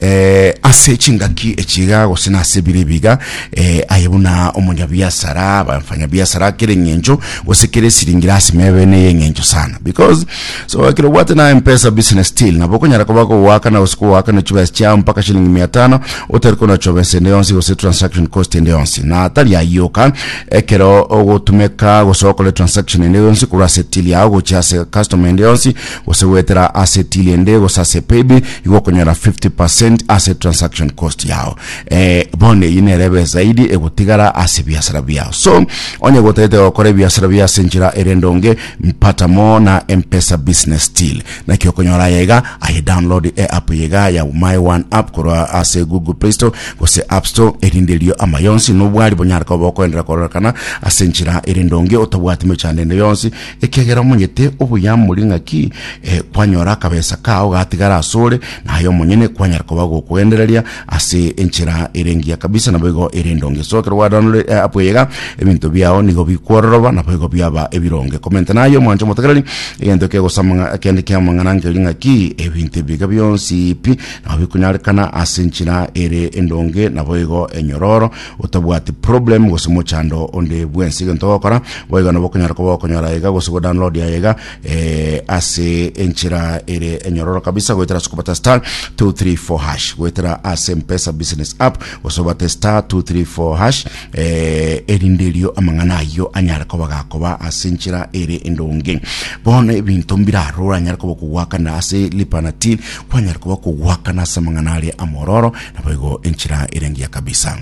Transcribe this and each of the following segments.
eh, ase chingaki echiga gose na ase bire biga eh, aye buna omonyabiasara abafanya biasara kere ng'encho gose kere siringira ase mebene ye ng'encho sana because so ekero obwate na mpesa business still nabo okonyara koba kogwakana gose kogwakana chibesa chiao mpaka shilingi mia tano otari kona chobesa ende yonsi gose transaction cost ende yonsi na atari ayiyoka ekero ogotumeka gose okore transaction ende yonsi korwa ase till yao gochia ase customer ende yonsi Gose goetera ase till ende gose ase paybill igo okonyora 50% ase transaction cost yao. Eh, bono eyio nere ebe zaidi egotigara ase ebiasara biao. So, onye gotagete gokora ebiasara bia ase enchera ere endonge, mpata moo na M-Pesa Business Till. Naki okonyora aya iga, aye download eapp eye iga ya My One App korwa ase Google Play Store gose App Store erinde erio amayonsi nobwari bonyare koba bokoenderera kororekana ase enchera ere endonge otabwati mechando ende yonsi Ekiagera omonyete oboyamori ng'aki eh, kwanyora akabesa kao gatigara asore, naye omonyene kwanyara koba gokogendereria ase enchera ere engiya kabisa, naboigo ere endonge esokerwa gwadanore eh, abweyega ebinto biao nigo bikwororoba, naboigo biaba ebironge. Komente naye omwancha omotegereri, egento kegosama kende kiamang'ana nkeri ng'aki ebinto ebiga bionsi pi nabo bikonyarekana ase enchera ere endonge, naboigo enyororo otabwati problem gose mochando onde bwensi egento ogokora boiga nobo okonyara koba okonyora iga gose go download yaye iga eh, ase enchera ere enyororo kabisa goetera ase kobata star 234 hash goetera ase mpesa business app gose obate star 234 hash eh, erinde erio amang'ana ayio anyare koba gakoba ase enchera ere endonge bono ebinto mbirarora anyare koba kogwakana ase lipana til kwanyare koba kogwakana ase amang'ana aria amororo Naboigo enchera ere engiya kabisa.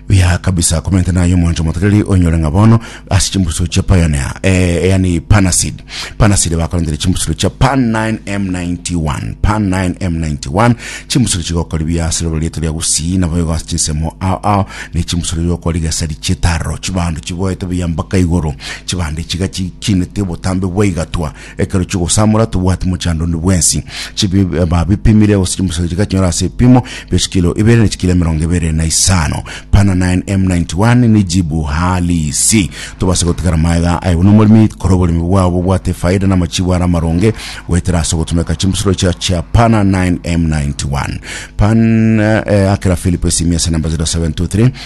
Biya kabisa komente nayo mwancho motoreri onyore ng'a bono ase chimbusu chia pioneer eh, yani panasid panasid bakorendere chimbusuro chia pan 9m91 pan 9m91 chimbusuro chigokori biya ase rogoro rieto ria gusii naboigo ase chinsemo ao ao ne chimbusuro rigokori gesari chietaro chibando chiboete biya mpaka igoro chibande chiga chikinete botambe bwaigatwa Ekero chigosamora tobwati mochando onde bwensi. Chibi- babipimire gose chimbusa chigachonyora ase ebipimo bia chikilo ibere na chikilo emerongo ebere na isano. Pana 9M91 nijibu halisi. Tobase gotigara maega aye buna omoremi kore oboremi bwao bobwate efaida na amachibo are amaronge goetera ase ogotumeka chimbusuro chia chia Pana 9M91. Pan eh, akera Philip esimi ase namba 0723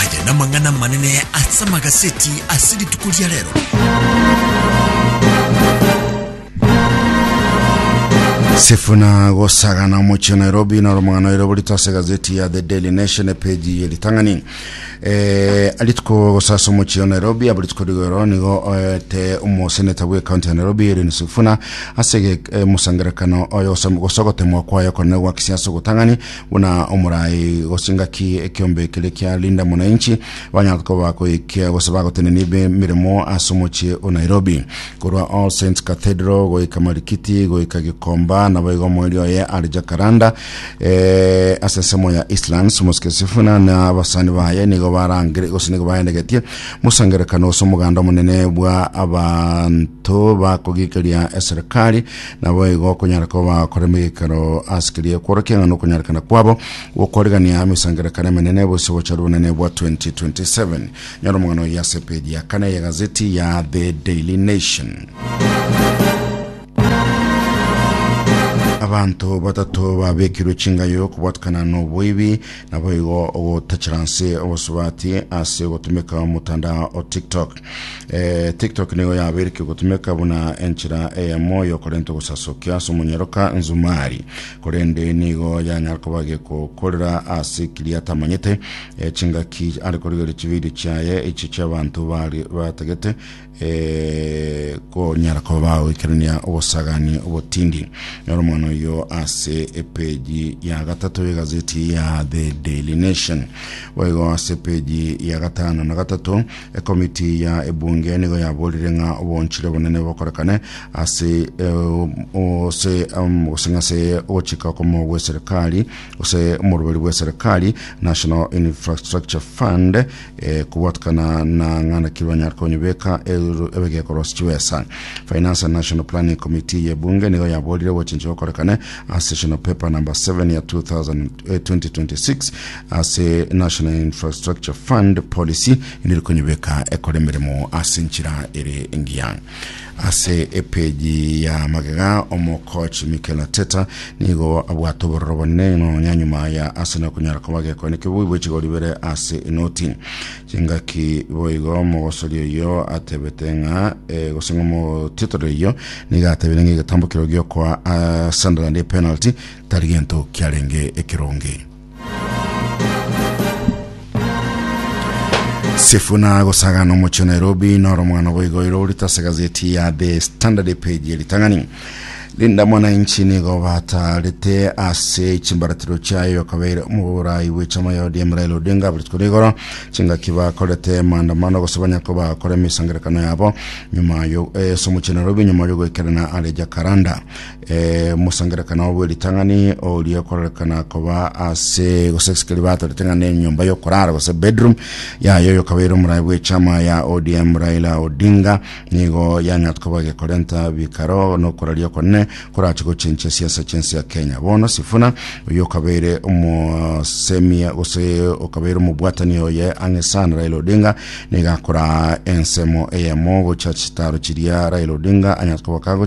Aya namang'ana amanene ase amagaseti ase rituko ria rero. Sifuna gosagana omochie Nairobi na romang'ana oire borito ase gazeti ya The Daily Nation epeji yeritang'ani eh, arituko gosasa omochie Nairobi abo rituko rigoro nigo oete omoseneta bwe county ya Nairobi Erin Sifuna ase ge- eh, mosangerekano oyo gosam- gosogotemwa kwayo konene gwa kisiasa ogotang'ani Buna omorai gose ngaki ekiombe kere kia Linda Mwananchi banyara koba koikia gose bagotenenia emeremo ase omochie o Nairobi korwa All Saints Cathedral goika Marikiti goika Gikomba naboigo omweri oye are Jacaranda eh, ase ensemo ya Eastlands Mosque Sifuna na abasani baye nigo barangire gose nigo baendegetie mosangerekano gose omoganda omonene bwa abanto bakogikeria eserikali Naboigo okonyara koba korema egekero ase keria ekworokia ng'a nokonyarekana kwabo gokorigan'ia emesangererekano emenene bosio gocha rubonene bwa 2027. Nyora omogano oye ase epeji ya kane ye gazeti ya The Daily Nation. Abanto batato babekirwe chingayo kobwatikana noboibi naboigo ogotachera nse obosubati ase gotumeka omotandao o TikTok. Eh, TikTok nigo yabeireke gotumeka buna enchera eyemo yokorenta ogosasokia ase omonyeroka Nzumari, korende nigo yanyara koba gekokorera ase kiria atamanyete. Eh, chingaki are korigereria chividio chiaye echi chiabanto bari batagete eh, konyara koba bagoikerania obosagani obotindi. Nyora omwana oyo ase epeji ya gatato y'egazeti ya The Daily Nation. Boigo ase epeji ya gatano na gatato Ekomiti ya ebunge nigo yaborire ng'a obonchire obonene bokorekane ase ase gose ng'ase ogochika okomo gw'eserikari gose omoruberi bw'eserikari National Infrastructure Fund kobwatikana na ng'a naki banyare konyebeka ebegekoro ase chibesa Finance and National Planning Committee ya ebunge nigo yaborire obochenchi bokorekane ase National Paper number 7 ya 2000, 2026 ase National Infrastructure Fund policy neri konyebeka ekore emeremo ase enchera ere engiya ase epeji ya magega omokoch Mikel Arteta nigo abwate obororo bonene nonya nyuma ya Arsenal konyara koba gekone kebui bwe chigori bere ase enoti chingaki boigo mogosori oyo atebete ng'a eh, gose ng'a omotitore oyo nigo atebire ng'a egetambo kero giokoa ah, Sunderland epenalty tari gento kiarenge ekeronge Sifuna agosagana omochie Nairobi noro mwana boigo iro orita ase gazeti ya The Standard page ritang'ani Linda Mwananchi nigo batarete ase chimbaratiro chiayo kabeire omoborai bw'echama ya ODM Raila Odinga aberituko rigoro chingaki bakorete maandamano gose banyako bakore emisangerekano yabo nyuma yo eh, somochie Nairobi nyuma yo goikerana are Jacaranda Ee, omosangererekano obo bwe ritang'ani oria okororekana koba ase gose esike riba atorete ng'a nenyomba yokorara gose bedroom yaye oyo okabeire omorai bw'echama ya ODM Raila Odinga nigo yang'at koba gekorenta bikaro nokoraria okonene korache gochencha esiasa chensi ya Kenya bono Sifuna oyo okabeire omosemia gose okabeire omobwatani oye ang'e sana Raila Odinga nigo akora ensemo eyemo gocha chitaro chiria Raila Odinga anyat koba kago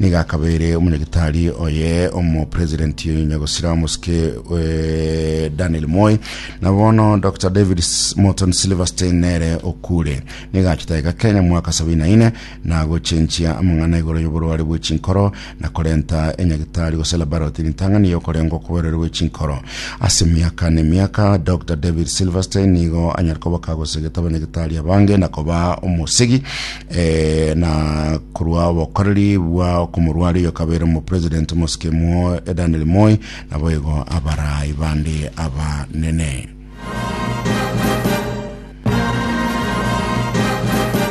Nigo akabeire omonyagetari oye omopresidenti nyagosira omosike Daniel Moi, na bono Dr David Morton Silverstein nere okure. Nigo achete iga Kenya mwaka sabini na ine na gochenchia amang'ana igoro y'oborware bwe chinkoro na korenta enyagetari gose laboratory ritang'ani y'okorengwa kw'oborware bwe chinkoro. Ase emiaka na emiaka Dr David Silverstein nigo anyare koboka gose getaba nyagetari abange na koba omosegi Eh, na korwa obokoreri bwa okomorwari oyo kabeire omo president omosikemo eh, Daniel Moi naboigo abarai bande abanene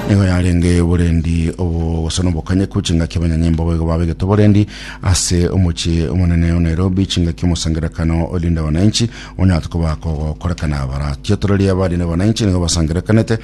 nigo yarenge oborendi obogosa nobokanyeku chingaki abanyanyimbo boigo babegete oborendi ase omochie omonene o Nairobi chingaki omosangerekano olinda wananchi onyate koba kogokorekana baratiotoreria abari na wananchi nigo basangerekanete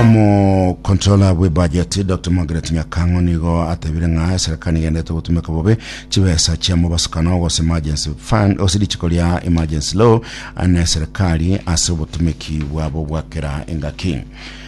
Omocontroller bw'ebudget Dr Margaret Nyakang'o nigo atebire ng'a eserikari nigenderete gotumeka bobe chibesa chia mobasukano gose emergency fund gose richiko ria emergency law na eserikari ase obotumeki bwabo bwa kera engaki.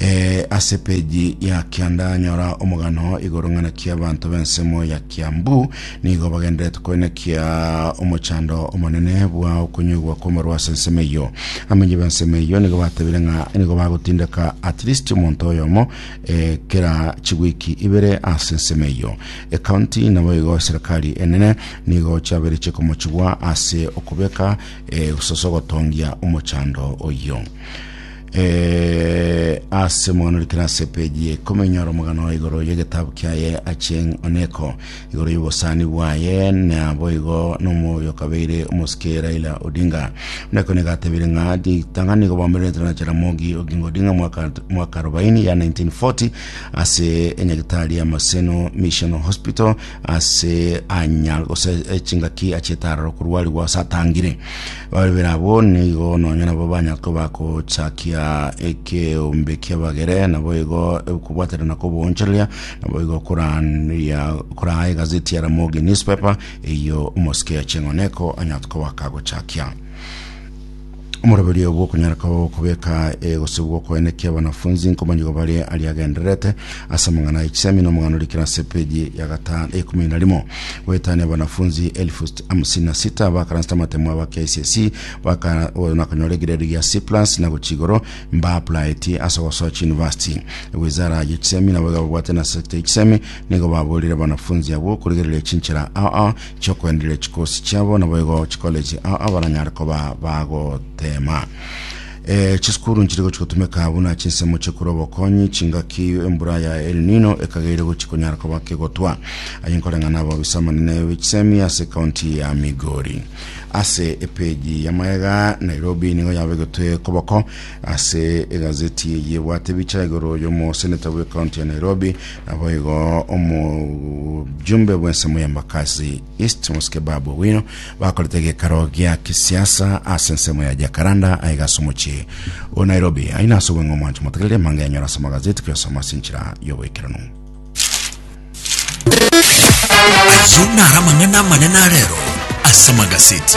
Eh, ase peji ya kianda nyora omogano igoro ng'ana kia abanto b'ensemo ya kiambu nigo bagenderete koenekia omochando omonene bwa okonywegwa kw'amarwa ase ensemo eyo amenye b'ensemo eyo nigo batebire ng'a nigo bagotindeka at least omonto oyomo eh, kera chigwiki ibere ase ensemo eyo ekaunti nabo igo serikali enene nigo chiabere chikomochigwa ase okobeka eh, soso gotongia omochando oyo Eh, ase mono rikere ase peji ya ikumi nyora omogano igoro y'egetabu kiaye Achieng' Oneko igoro y'obosani bwaye na boigo n'omoyo kabeire omosike Raila Odinga Oneko nigo atebire ng'a ritang'ani nigo bwamererete na Jaramogi Oginga Odinga mwaka mwaka 40 ya 1940 ase enyagitari ya Maseno Mission Hospital ase anya gose eh, chingaki achiete aroro korwarigwa ase atangire Barabera abwo nigo nonya nabo banya koba gochakia ekeombe ki'abagere, nabo igo okobwaterana kw'oboonchoreria, nabo igo korandia koraa egazeti ya Ramogi Newspaper, eyio omosike ya Ching'oneko anya kobaka gochakia. Omoroberio obo okonyara koba okobeka egosibwa okoene ki'abanafunzi nkomanyigo bare aria agendererete ase amang'ana ya chisemi na omong'anorikire ase epeji ya gatano ekumi na rimo goetania abanafunzi elfu hamsini na sita bakaransete amatemo aba KCSE baka- o- na konyora egeredu gia C plus na gochia igoro mbaaplaeti ase ogosoa chiuniversity ewizara y'echisemi nabo igababwate na sector y'echisemi nigo baborire abanafunzi abwo korigereria chinchera aa chiokoendereria chikosi chiabo naboigo chicollege aa baranyare koba bagotema Eh, chisukuru nchiri gochi gotumeka buna chinsemo chekura obokonyi chingaki embura ya El Nino ekageire gochi konyara koba kegotwa aye nkoreng'ana abo obisa amanene b'echisemi ase county ya Migori ase epeji ya maega Nairobi nigo yabegetwe koboko ase egazeti eye ebwate bicha igoro y'omoseneta bwe county ya Nairobi nabo igo omojumbe bw'ensemo y'embakasi East mosike Babu Owino bakorete gekaro gia kisiasa ase ensemo ya Jacaranda aiga ase omochie o Nairobi. Aina ase obong'e omwancho motegerere emanga enyora ase amagazeti koyasoma ase enchera y'oboikeranu. Ayio naro amang'ana amanene a rero ase amagazeti.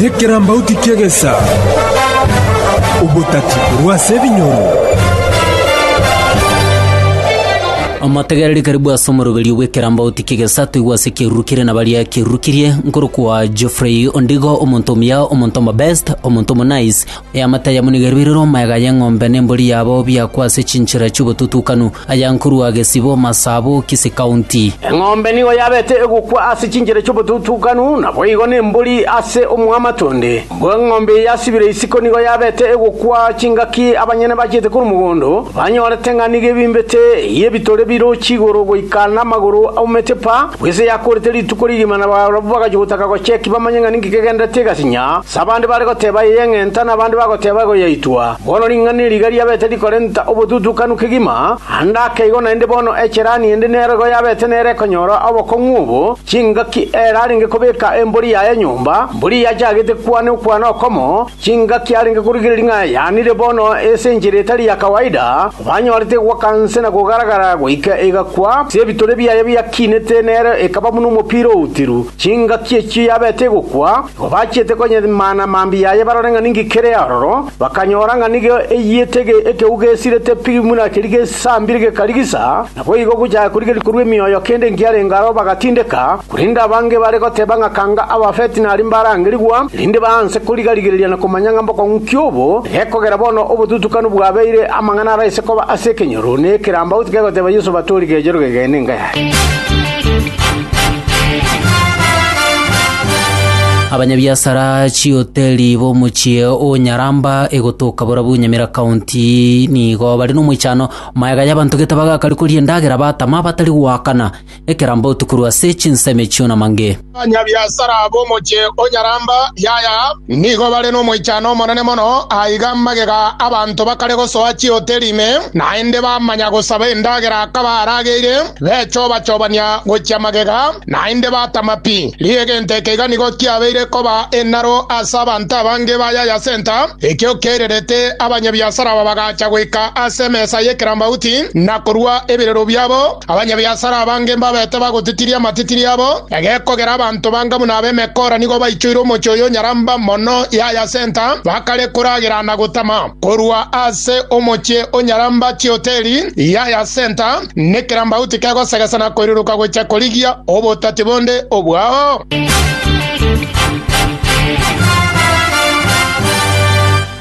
Nekerambauti ki'egesa, obotati korwa ase ebinyoro. Omotegereri karibu ase omoroberio bw'ekerambauti ki'egesa toigwe ase ekeruru kere na baria ekeruru kirie, nkorokwa Geoffrey Ondigo, omonto omuya, omonto omobest, omonto omonice, Eamate ayamonegerwe ere nomaega y'eng'ombe nembori yabo biakwa ase chinchera chi'obotutukanu, aya nkorwa gesibo Masaabo, Kisii County. Eng'ombe nigo yabete egokwa ase chinchera chi'obotutukanu, naboigo nembori ase omwamato onde. Mbwa eng'ombe eye yasibire isiko nigo yabete egokwa chingaki abanyene bachiete korwa mogondo, banyorete ng'a nigo ebimbete eyio ebitore birochi igoro goika namagoro aumete pa, bw'ise yakorete rituko rigima na barabwo bagachia gotaka gocheki bamanye ng'a ninki kegenderete egasinya. Abande bare goteba ey'eng'enta, na abande bagoteba egoyaitwa. Bono ring'ana eri riga riabete rikorenta obotutukanu kegima, ande ake igo naende bono echerani ende nero igo yabete nero ekonyora obokong'u obo, chingaki ere arenge kobeka embori yaye nyomba, mbori yachagete kwane okwane okomo, chingaki arenge korigereria ng'a yanire bono ase enchera etari ya kawaida, banyorete goaka nse na kogaragara goika egakwa, ase ebitore biaye biakinete nero ekaba buna omopira outiru, chingaki echio yabete egokwa, Obachiete konyimana mambia yaye barore ng'a ninki kere aroro, bakanyora ng'a nigo eyiete ekegeu gesirete pi buna keria gesambire gekarigisa, naboigo gochaka korigeria korua emioyo kende enkiarenge aro bagatindeka, korende abange bare goteba ng'a kanga abafeti naria mbarangerigwa, erinde baanse koriga-rigereria na komanya ng'a mbokong'u ki obo, egekogera bono obotutukanu bwabeire amang'ana ara ase koba ase ekenyoro, ne ekerambaut kegoteba Yeso batori gechero gegeene enga yaye. Abanyabiasara chihoteli b'omochie o Nyaramba egotoka Borabu Nyamira County nigo bare nomoichano maega y'abanto gete bagakari koria endagera batama batari goakana ekerambe otu korwa ase chinsemo echio na mange. Abanyabiasara b'omochie o Nyaramba yaya nigo bare nomoichano omonene mono aiga magega abanto bakare gosoa chihoteli ime naende bamanya gosaba endagera akabaarageire. Bechoba-chobania gochia magega, naende batama pi. Riire gento eke iga nigo kiabeire koba enaro ase abanto abange ba Yaya Senta, ekio kererete abanyabiasara aba bagacha goika ase emesa y'ekerambauti na korua ebirero biabo. Abanyabiasara abange mbabete bagotitiria amatitiri abo, egekogera abanto banga buna ab'emekora nigo baichoire omochie oyo nyaramba mono Yaya Senta, bakare koragera na gotama. Korua ase omochie onyaramba chihoteli Yaya Senta, Nekerambagu tikegosegesa na koiruruka gochia korigia obotati bonde obwao.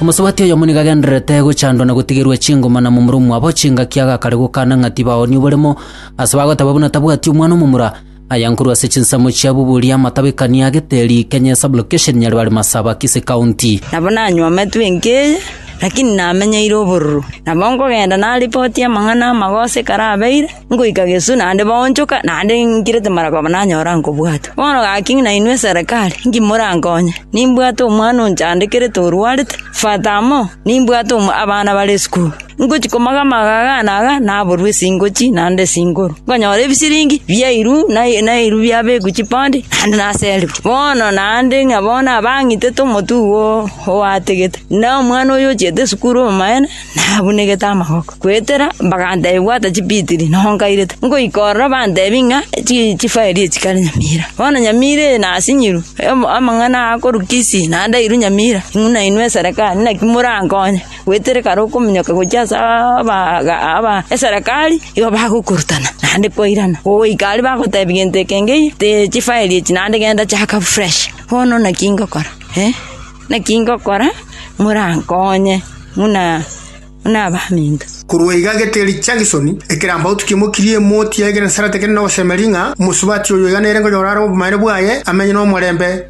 Omosubati oyomo nigo agendererete gochandwa na gotigerwa echingoma na momura omwabo, chingaki agakare gokana ng'a tibaoonia oboremo, ase bagoteba buna tabwati omwana omomura. Aya nkorwa ase chinsemo chia Bubuli, Amatabekania, Geteri, Kenya, Sub-location, Nyaribari, Masaba, Kisii County. Nabo nanyometwe enka eye, lakini namenyeire obororo. Nabo nkogenda naripotie amang'ana amagoso ekero abeire, nkoika Gesuu naende baonchoka, naende nkirete mara koba nanyora nkobwata. Bono gaki ng'ina inwe eserekari, inki morankonye? Nimbwate omwana onchaandekerete orwarete, fata amo, nimbwate omo- abana bare esukuru. Ngochia komoga amagaga aane aya, naborwe esingochi naende esinguru. Nkonyora ebisiringi biairwe nairwe biabekwa chipoondi, naende naserigwe. Bono naende ng'a bono abang'itete omotugo oategete. Na omwana oyio ochiete esukuru omobaene, nabunegete amaboko. Goetera bagantebia bwata chipitiri nonkairete. Nkoika ororo bantebia ng'a chifaeli echi chikare nyamira. Bono nyamira eye nasinyirwe, amang'ana aa akorwa Kisii naende airwe nyamira. Ng'u nainwe eserekari, naki morankonye. Goetera ekero okominyoka gochia ase abaaga aba eserekari, igo bagokorutana naende kwairana. Goika aria bagotebi gento eke ngei, tee chifaeli echi naende genda chaka fresh. Bono naki ngokora, eh, naki ngokora morankonye buna buna abaminto. Korwa iga gete eri Jackson, ekerambe otukie mokirie emoti yaye kera nsara tekeri nogosemeria ng'a omosubati oyo iga nere nkonyora are obomanyene bwaye, amenye nomorembe.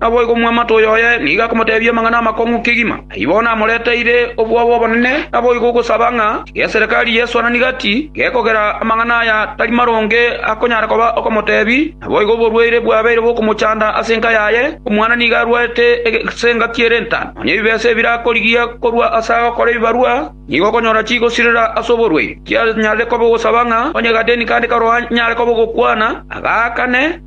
Naboigo omwamate oyoye nigo akomoteebia amang'ana amakong'u kegima. Ayio bono amoreteire obwoba obonene, naboigo ogosaba ng'a geserekari Yeso ananigati, gekogera amang'ana aya tari maronge akonyara koba okomoteebi, naboigo oborwaire bwabeire bokomochanda ase enka yaye, omwana nigo arwarete ase engaki ere entano. Nonya ebibesa ebirakorigia korwa ase agokora ebibarwa nigo okonyora chigosirera ase oborwaire. Tianyarire koba ogosaba ng'a onye Gadeni kande Karo anyare koba ogokwana, agaakane.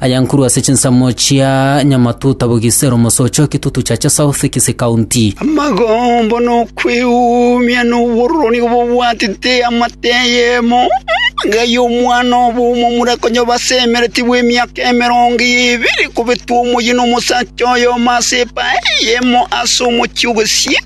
Aya nkorwa ase chinsemo chia Nyamatuta Bogisero mosocha o Kitutu Chacha South Kisii County. Amagombo na okwegumia na obororo nigo bobwatete amate eyemo enga y'omwana obomo omura konya basemereti bw'emiaka emerongo ebere kobetwa omoyie nomosacha oyomo ase epae eyemo ase omochie o Gesiii.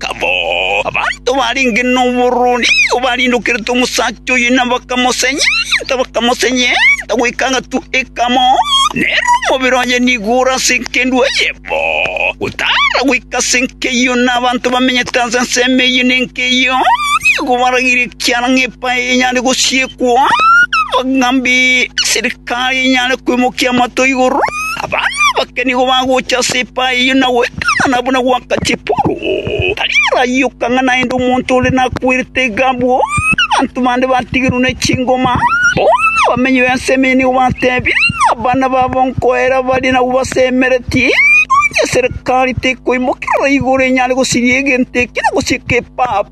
bakamoaka bo. Abanto barenge noboroni barindokerete omosacha oye na bakamosenyenta, bakamosenyenta goika agatua ekamo, na ere omobere oye nigo ore ase engendu eye bo, gotara goika ase enka eyio, na abanto bamenyete ase ensemo eyio na enka eyio nigo barageire ekiara ng'a epaye enyare gosiekwa, ng'a mbi eserikari enyare kwemokia amato igoro. Abana abake nigo bagocha ase epae eyio na goetanana buna gwakache Paulo. Tariara ayoka ng'a naende omonto ore nakwerete iga abwo, abanto bande batigerwe ne chingoma. Bono abamenyi b'ensemo eyio nigo bateebia abana babo nkoera barie nabwo basemeretie, onye Serekari tekoimokerora igoro enyare gosiria egento ekio na gosieka epapu.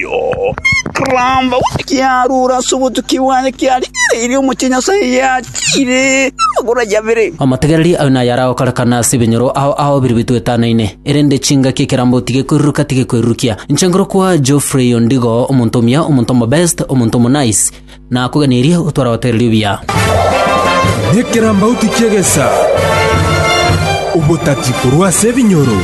Yoo, koramba gose kiarure ase obotuki bwaye kiarigereirie omochie Nyasae yachiire amagoro aye abere. Amategereri ayo naye aragokorekana ase ebinyoro ao ao bire bitwetanaine, erende chingaki ekerambe otige koiruruka tige koirurukia. Inche nkorokwa Geoffrey Ondigo, omonto omuya, omonto omobest, omonto omonice. Nakoganerie otware abategereri obuya. Nekerambe otikie egesa, obotati korwa ase ebinyoro.